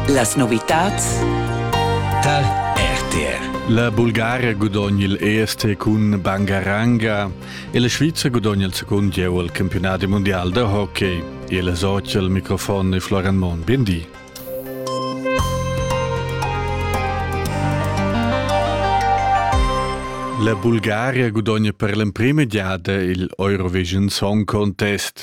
Las novitads Tal RTR. La Bulgaria gudogna il EST cun Bangaranga e la Svizzera gudogna il secund gieu al campionat mondial da hockey. Il soci al microfon è Florian Mon. Biendi. La Bulgaria gudogna per l'emprima giada il Eurovision Song Contest.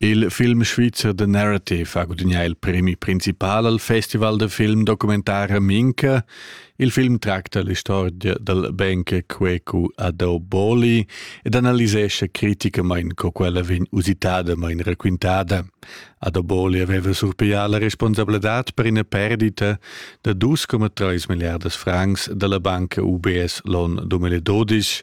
Il film svizzer The Narrative ha gudagnà il premi principal al festival da film documentar Minca. Il film tracta l'istorgia dal bancher Cuecu Adoboli ed analisescha criticamain co quella vegn usitada main raquintada. Adoboli aveva surpiglià la responsabladad per ina perdita da 2,3 milliardas francs da la banca UBS l'on 2012.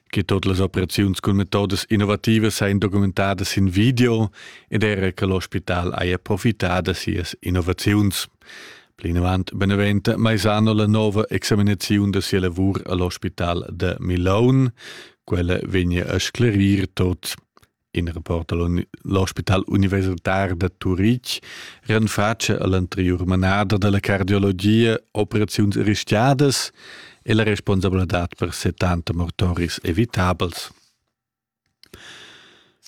che tot las operaziuns cun metodas innovativas ein documentadas in video ed era che l'ospital haja profitada sias innovaziuns. Plinavant beneventa Maisano la nova examinaziun da sia lavur all'ospital da Milon. Quella vegna a sclerir tot. in rapport all'ospital universitar da Turitg renfatscha all'anterior manada dalla cardiologia operaziuns rischiadas e la responsabladad per 70 mortoris evitabels.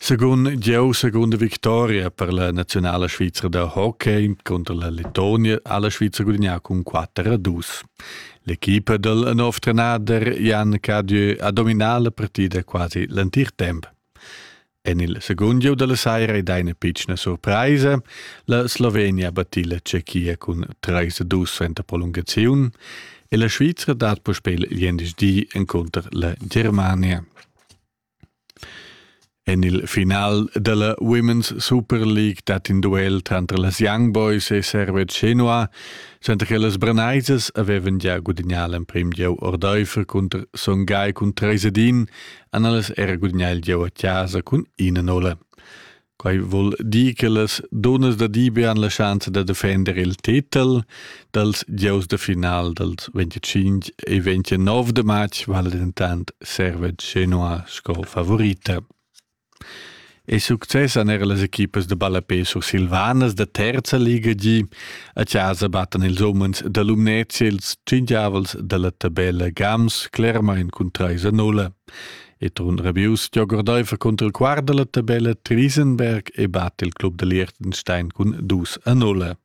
Segun Dieu, seconda victoria per la nazionale svizra da hockey contro la Letonia ha la Svizra gudagnà con 4 a 2. L'equipa del nov trenader Jan Cadieu ha dominato la partita quasi l'antir tempo. En il segund gieu da la saira ei da ina pitschna surpraisa. La Slovenia batti la Tschechia cun 3-2 suenter prolungaziun e la Svizra dat puspè gliendisdi encunter la Germania. En il final della Women's Super League dat in duel tranter las Young Boys e Servet Chenoa, senza che las Branaisas avevan già gudagnà l'emprim gieu ordaifer cunter Songhai cun 3 Edin han ellas era gudagnà il gieu a chasa cun ina nolla. Quai vul dir che las dunnas da Dibe han la schanza da defender il titel dals gieus da final dals 25 e 29 de match vale dentant Servet Genoa sco favorita. E success han era las equipas da ballapé sursilvanas da terza liga gi. A chasa battan ils umens da Lumnezia ils tschingiavels dalla tabella Gams Clermain cun 3 a 0. E Trun Rabius giogordaifa contro il quart dalla tabella Triesenberg e batte il club da Liechtenstein cun 2 a 0.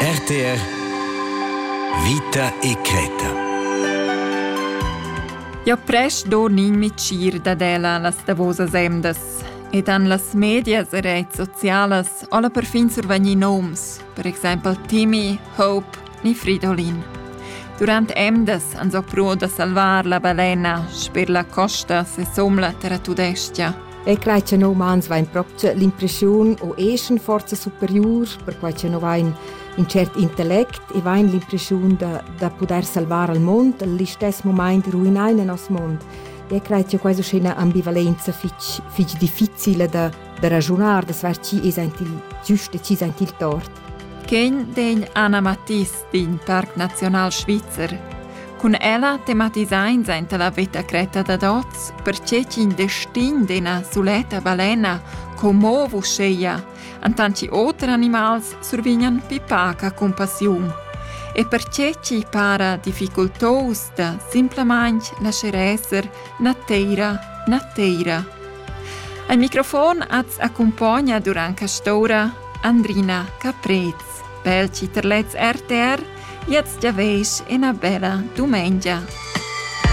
RTR Vita e creta. Jo presch do nin micir dad ella las davosas emdas ed han las medias e reits socialas alla perfin survegni noms, per exempel Timmy, Hope ni Fridolin. Durant emdas han so pruo da salvar la balena sper la costa se somla terra tudestia. E quai che no umans vain propcha l'impreschiun o eschan forza superiur, perquai che no vain ün tschert intellect e vain l'impreschiun da, da pudair salvar al mond, al istess momaint ruinar in nos mond. E cred che quasi è una ambivalenza fitch, fitch difficile da, da ragionare, da saper chi es il giusto e chi es il tort. Quem den Anna Matisse d'in parc naziunal svizzer. Cun ella tematisains aint la veta cretta dad oz, perche ch'in destin d'ena suletta balena commo vusceia, antanti oter animals survignan pipaca compassiun. E perche ci para difficultos da simplamain lascer esser na teira na teira. Al microfon az accompagna durant castora Andrina Caprez. Per chi terlets RTR, jetzt ja veis ina bella dumengia.